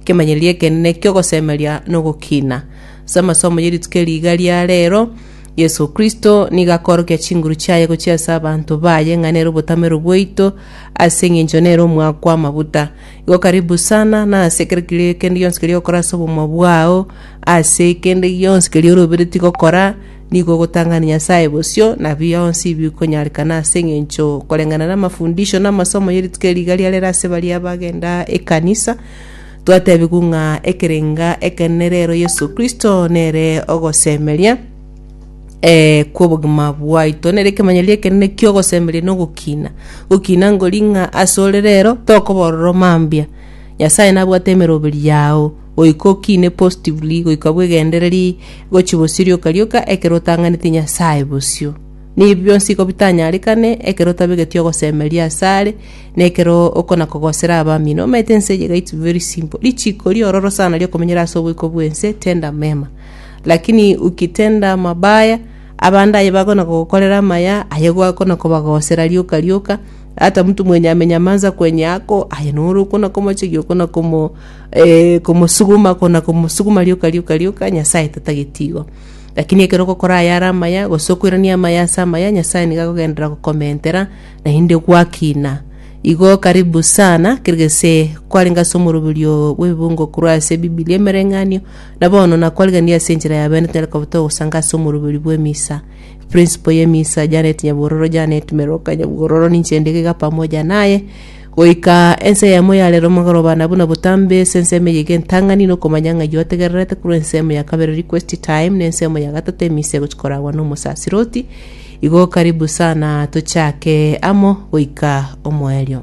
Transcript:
Ekemanyererio ekenene ki'ogosemeria nogokiina. Ase amasomo ye rituko eri iga ria reero, Yeso Kristo nigo akoorokia chinguru chiaye gochia ase abanto baye ng'a nere obotamero bwaito ase engencho nere omoake kw'amaguta. Igo karibu sana nase ekero kende gionsi keria ogokora ase obogima bwao, ase kende gionsi keria oroberetie gokora, Nigo ogotang'ani Nyasae bosio, na bionsi bikonyarekana ase engencho koreng'ana namafundisho na amasomo ye rituko eri riga riarera ase baria bagenda ekanisa. Twatebigwa ng'a ekerenga ekenene rero Yeso Kristo nere ogosemeria eh, kw'obogima bwaito. Nere ekemanyero ekenene ki'ogosemeria na ogokina. Gokina ngori ng'a asore rero tokoba ororo mambia. Nyasae nabwate emeroberio yao. Goika okiine positively, goika bwegendereri, gochia bosio rioka rioka ekero otang'aneti Nyasae bosio. Nibi bionsi iko bitanyarekane ekero otabegeti ogosemeria ase are, na ekero okona kogosera abamino. Omanyete ense eye gaitu very simple. Richiko riororo sana riokomenyera ase oboiko bw'ense, tenda mema. Lakini ukitenda mabaya, abande aye bakona kogokorera amaya, aye gwakona kobagosera rioka rioka, hata mtu mwenye amenyamaza kwenye yako, aye noro okona komochegia okona komo eh, komosuguma ko na komosuguma rioka rioka rioka nyasae tatageti igo lakini ekero ogokora aya are amaya gose okoirania amaya ase amaya nyasae nigo agogenderera gokomentera naende gwakina igo karibu sana kere gese kwarenge ase omoroberio bw'ebibungo korwa ase ebibilia emereng'anio na bono nakwarigania ase enchera ya bene tonyare koba togosanga ase omoroberio bw'emisa principle y'emisa janet nyabororo janet meroka nyabororo ninche ndigaiga pamoja naye Goika ense yamo yarera omogoroba na buna botambe ase ensemo eyio egentang'ani na okomanya ng'a ayio ategererete korwa ensemo ya kabere request time na ensemo ya gatato emisa egochia koragwa na omosasiroti. Igo karibu sana tochake amo goika omoerio.